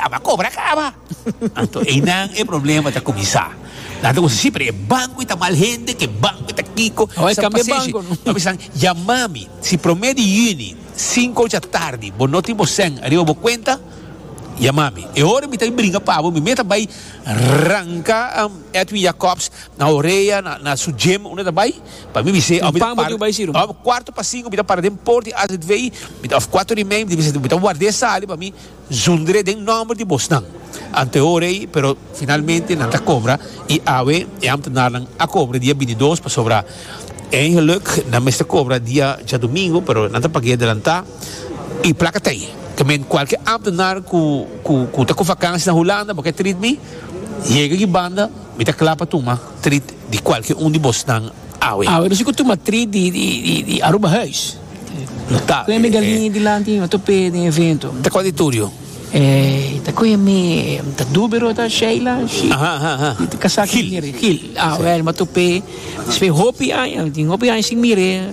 Aba cobra caba. Anto einan e problema ta cuminsa. Nan ta cusa si pero e banco y ta mal hende que banco y ta kico. Awor e cambia banco no. Papi san yamami si prome di juni cinco ocha tardi bo no tin bo cen ariba bo cuenta yamami e ora mi ta bay bringa pabo mi mey ta bay ranca Edwin Jacobs na orea na su gym unda ta bay pa mi bise mi ta para den cuarto pa cinco mi ta para den poort di azv mi ta of cuatro ora y medio mi ta guarda e sali pa mi Zundre den nomber di bosnan. Ante ora ei, pero finalmente nan ta cobra y awe e ambtenarnan a cobra dia bintidos pasobra eigenlijk nan mester cobra dia djadomingo pero nan ta pag'e adelanta y placa t'ei. Ta men cualke ambtenar cu cu ta cu vakantie na Hulanda bo ke treat mi? Yega aki banda mi ta cla pa tuma treat di cualke un di bosnan awe. Awe nos tin cu tuma treat di di di Aruba huis. No ta. Koe mi galini dilanti no ta pee den evento. Ta koe di turio. Ey ta koe mi ta dubero ta Sheila shi mi ta kasa ku mire Gil ah well ma to pee despe hopi aña tin hopi aña sin mire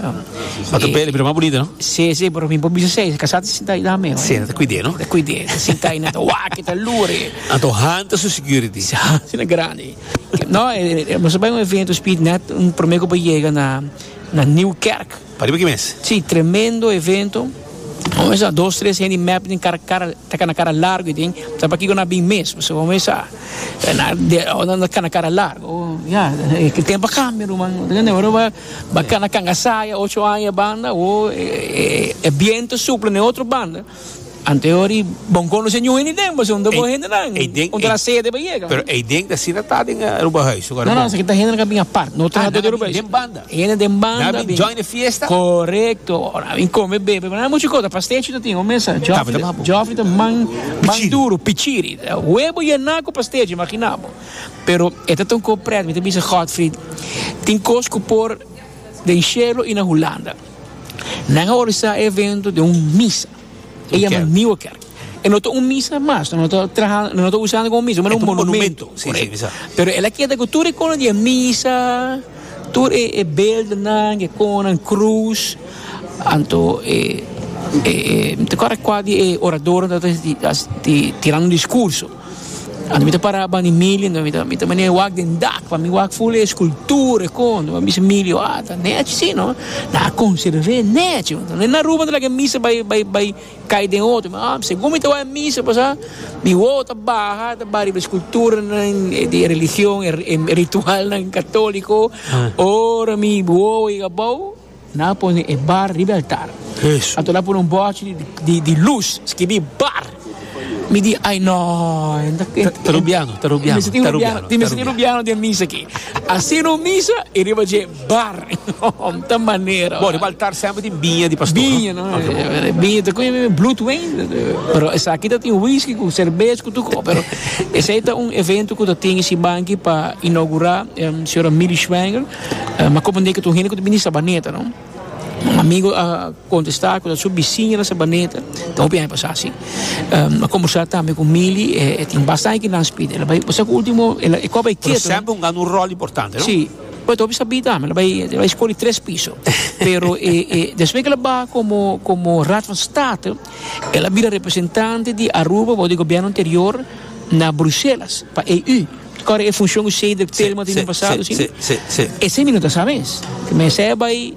ma to pee lo bira mas bunita no si si pero mi por bisa esei kasa ta sinta ayi dame si ta kuide no ta kuide ta sinta ayi ta waki ta luri anto han ta su security si han ta grandi no boso bai un evento speed net un prome ku bo yega na na new kerk. Pariba ki mes? Sí, tremendo evento. Bo mester sa dos tres hende mep den kara kara ta kana kara largo y den sa pakiko nan a bin mes p'esei bo mester sa e na ora nan ta kana kara largo ya e tempo a kambia ruman bo ta kende ora bo a kana kanga saya ocho aña banda o e biento supla den otro banda. Ante ori bon conoce ñu hende den pasobra no ta bon hendenan. Ei den, Un ta ei- na sede pa yega. Pero ei den ta sina ta den eh, Aruba Huis. Su No, no, esaki ta hende nan ka bin apart. No ta Ah, nan a bin Aruba Huis. den banda. Hende den banda. Nan a bin join e fiesta. Correcto. Ora, a bin come, bebe. Nan a mucho cosa. Pastechi ta tin, un mesa. Joffrey Tapo ta ta- babu. Joffrey ta man, man Pichiri. duro, pichiri. Huevo yena cu pastechi, imagina bo. Pero e ta tunco pret. Mi ta bisa Godfrey, tin cos cu por den cielo y na Hulanda. Nan a organisa e evento den un misa. E yama Nieuwe Kerk. E no ta un misa mas, no ta traha, no ta usando como misa, mas un monumento. Sí, sí, misa. Pero el a queda con todo icono de misa, todo e, e beelden nan, e conan, cruz, anto e, e, e, te acuerda qua di e orador dat is di, di, di, tirando discurso. Anto mi ta para ban di Milio anto mi ta mi ta manera e wak den dak pa mi wak ful e eskultura e kon anto mi a bisa Milio ah ta nèchi si no na konservé nèchi anto na Aruba ta lag'e misa bai bai bai kai den oto mi ah segun mi ta wak e misa pasá mi wowo ta baha ta baha riba e skulturanan e di e religion e ritualnan katóliko ora mi wowo yega abou. Nan a pone e bar riba e altar. Anto nan a pone un bòchi di lus, skibí Bar. Mi di, Ai nò! Ta rubiano, ta rubiano. Mester tin rubiano, tin mester tin rubiano den misa aki. A sina un misa i riba dje bar. Hom ta manera. Bo, riba altar semper tin biña di pastor, no? Biña, no. Biña ta koe mi blut wen. Pero esaki ta tin wiski ku serbes ku tur kos. Pero esei ta un evento ku ta tin e sibanki pa inaugurá e señora Millie Schwanger. Mi a comprende cu ta un hende cu ta bini Sabaneta, no? Un amigo a contesta cu ta su bisiña na Sabaneta, ta hopi aña pasa si. Mi a combersa tambe cu Mili, e tin basta aña cu nan spida, ela bai, pasa cu ultimo, e kor bai ketu, no? Pero semper un gana un rol importante, no? Si, pero ta hopi sabi tambe, ela bai, ela bai scoli tres piso, pero e, e, despues cu ela ba como, como Raad van State, ela a bira representante di Aruba for di gobierno anterior na Bruselas, pa EU. Kòrda e funshon ku Cedric Tillman tin den pasado, si no? Esei mi no ta sa mes. Mester a bai,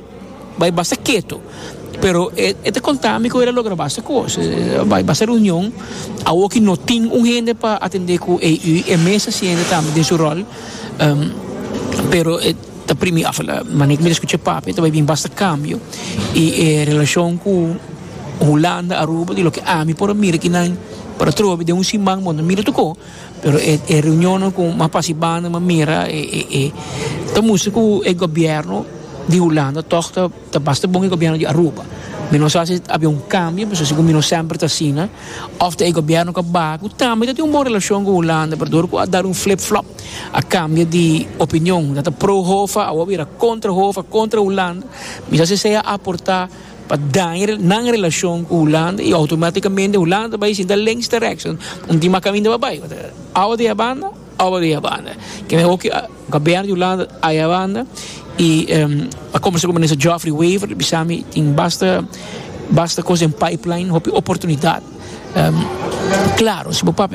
bai basta ketu. Pero e, e ta konta mi ku e lo logra basta kos. E a bai basta reunion. Awor ki no tin un hende pa atendé ku AU, e mes a sienta tambe den su ròl. Pero e ta primi, òf la manera ku mi ta skucha Pape, ta bai bin basta kambio. I e relashon ku Hulanda, Aruba, di loke ami por a mira ki nan por a trobe den un siman, bo a mira tokó. Pero e e reunionnan ku mas fasi banda mi a mira e e e ta mustra ku e gobièrnu di Hulanda tòg ta ta basta bon ku e gobièrnu di Aruba. Mi no sa si a habia un kambio, pasobra segun mi no semper ta asina, òf ta e gobièrnu ku a baha ku tambe ta tin un bon relashon ku Hulanda, pero dor ku a dal un flip flop, a kambia di opinion, a ta pro Hoffa, awor a bira kontra Hoffa, kontra Hulanda, mi sa si esei a aportá. pa daña nan relashon ku Hulanda i outomatikamente Hulanda ta bai sinta lèns direkshon un tin mas kaminda pa bai awa di eabanda awa di eabanda ke me hopi gobiernu di Hulanda a eabanda i a komensá ku minister Geoffrey Wever a bisa mi tin basta basta kos den pipeline hopi oportunidat klaro si bo papia.